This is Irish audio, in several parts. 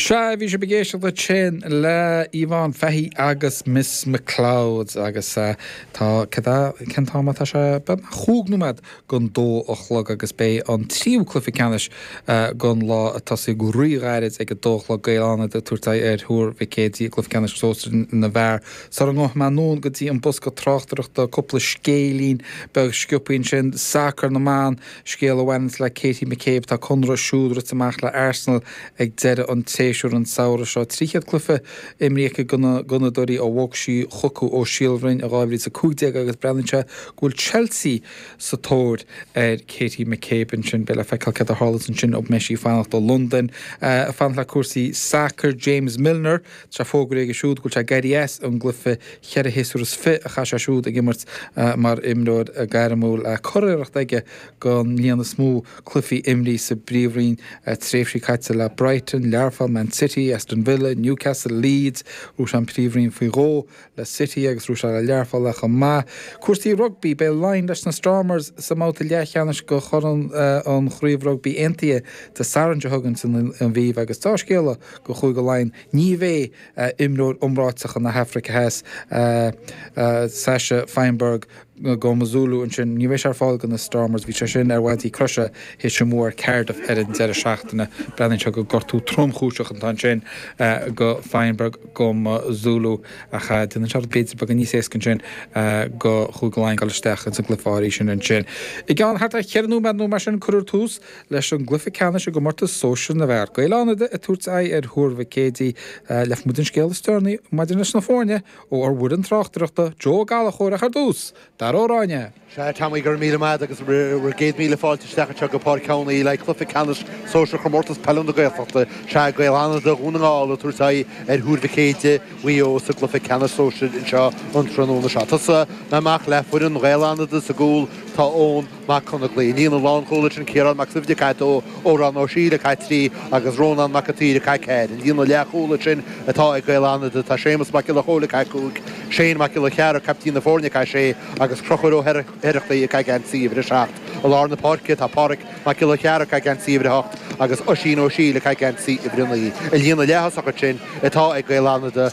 Sea, bhí sibh ag éisteacht ansin le Yvonne Fahy agus Miss McLeod agus tá, céard é, cén t-am atá sé? Beagnach chúig nóiméad gon dó a chlog agus beidh an tríú cluiche ceannais gon lá ag tosaí go rí-ghairid ag a dó a chlog, Gaeil Fhánada ag tabhairt aghaidh ar Thuar Mhic Éadaigh i gcluiche ceannais Sóisear na bhFear. Sula ngabhfaidh mé anonn go dtí an bosca tráchtaireachta, cúpla scéilín beag sciopthaí ansin, sacar na mban, Scéal a bhaineanns le Katie McCabe, tá a conradh siúd rite amach le Arsenal ag deireadh an tséasúir an samhradh seo. 300 cluiche imrithe aici go na Gunnadóirí ó bhog sí chucu ó Síol Bhroin in 2015 agus breathnaíonn sé go bhfuil Chelsea sa tóir ar Katie McCabe. Ansin beidh le feiceáil céard a tharlós ansin, an mbeidh sí ag fanacht i Londain, ag fanacht le cúrsaí sacair James Milner, tá fógraithe aige siúd go bhfuil sé ag éirí as an gcluiche cheithre shéasúr is fiche a chaith sé siúd ag imirt mar imreoir gairmiúil, curiarracht aige den líon is mó cluichí imrithe sa bPríomhroinn, tréimhsí caite le Brighton, Learpholl, Man City, Aston Villa, Newcastle, Leeds, ghnóthaigh sé an Príomhroinn faoi dhó. le City agus ghnóthaigh sé é le Learpholl chomh maith. Cúrsaí rugbaí, beidh Laighin leis na Stormers sa mbabhta leathcheannais de Chorn an Chraobh Rugbaí Aontaithe Dé Sathairn seo chugainn san Aviva agus dea-scéala do Chúige Laighean, ní bheidh imreoir iomráiteach na hAfraice Theas, Sacha Feinberg, Mngomezulu ansin. Ní bheidh sé ar fáil go na Stormers, bhí sé sin ar mhaidí croise, théis a mbua ar Cardiff ar an deireadh seachtaine, breathnaíonn sé gur gortú tromchúiseach atá ansin go Feinberg-Mngomezulu, ach déanann sé rudaí b'fhéidir beagán níos éasca ansin go Chúige Laighean dul isteach ins an gcluiche áirithe sin ansin. I gceann thart ar cheithre nóiméad nó mar sin cuirfear tús leis an gcluiche ceannais i gcomórtas sóisir na bhfear. Gaeil Fhánada ag tabhairt aghaidh ar Thuar Mhic Éadaigh. Gheobhaidh muid an scéal is deireanaí maidir leis na foirne ó ár bhfoireann tráchtaireachta Joe Ó Gallachóir ach ar dtús, Dara Ó Ráinne. Sea, Tommy, go raibh míle maith agat agus bhur gcéad míle fáilte isteach anseo go Páirc Sheáin Uí Laidh, cluiche ceannais sóisear Chomórtas Peile na Gaeltachta. Sea, Gaeil Fhánada Dhún na nGall ag tabhairt aghaidh ar Thuar Mhic Éadaigh Mhaigh Eo sa gcluiche ceannais sóisir anseo an tráthnóna seo. Ag tosaí amach le foireann Ghaeil Fhánada sa gcúl, tá Eoin, Mac Conghaile, i líne na lánchúl ansin Ciarán Mac Suibhne ag caitheamh dó, Odhrán Ó Siadhail ag caitheamh trí agus Rónán Mac an tSaoir ag caitheamh ceathair. I líne na leathchúl ansin atá ag Gaeil Fhánada, tá Séamus Mac Giolla Chomhaill ag caitheamh cúig, Seán Mac Giolla Chearra, captaen na foirne, ag caitheamh sé agus Crochúir Ó hOireachtaigh ag caitheamh geansaí uimhir a seacht. I lár na páirce tá Páraic Mac Giolla Chearra ag caitheamh geansaí uimhir a hocht agus Oisín Ó Siadhail ag caitheamh geansaí uimhir a naoi. I líne na leaththosach ansin atá ag Gaeil Fhánada,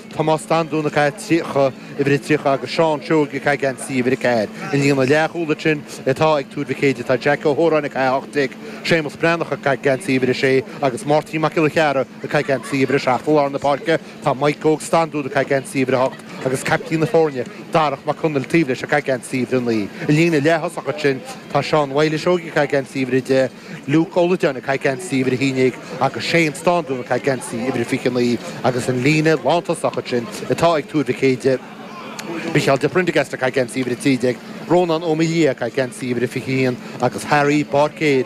Tomás Standún ag caitheamh 30, uimhir 30, agus Seán Seoige ag caitheamh geansaí uimhir 4. I líne na leathchúl ansin atá ag Tuar Mhic Éadaigh, tá Jeaic Ó hÓráin ag caitheamh 18, Séamus Breathnach ag caitheamh geansaí uimhir 6, agus Máirtín Mac Giolla Chearra ag caitheamh geansaí uimhir 7. I lár na páirce tá Maidhc Óg Standún ag caitheamh geansaí uimhir 8, agus caiptín na foirne, Darach Mac Conaill, taobh leis, ag caitheamh geansaí uimhir 9. I líne na leaththosach ansin tá Seán Mhaoile Seoige ag caitheamh geansaí uimhir 10, Luke Ó Loideáin ag caitheamh geansaí uimhir 11 agus Shane Staunton ag caitheamh geansaí uimhir 29 agus an líne lántosach ansin atá ag Tuar Mhic Éadaigh, Micheál de Prendergast ag caitheamh geansaí uimhir 13, Rónán Ó Maoildhia ag caitheamh geansaí uimhir 21 agus Harry Bairéad,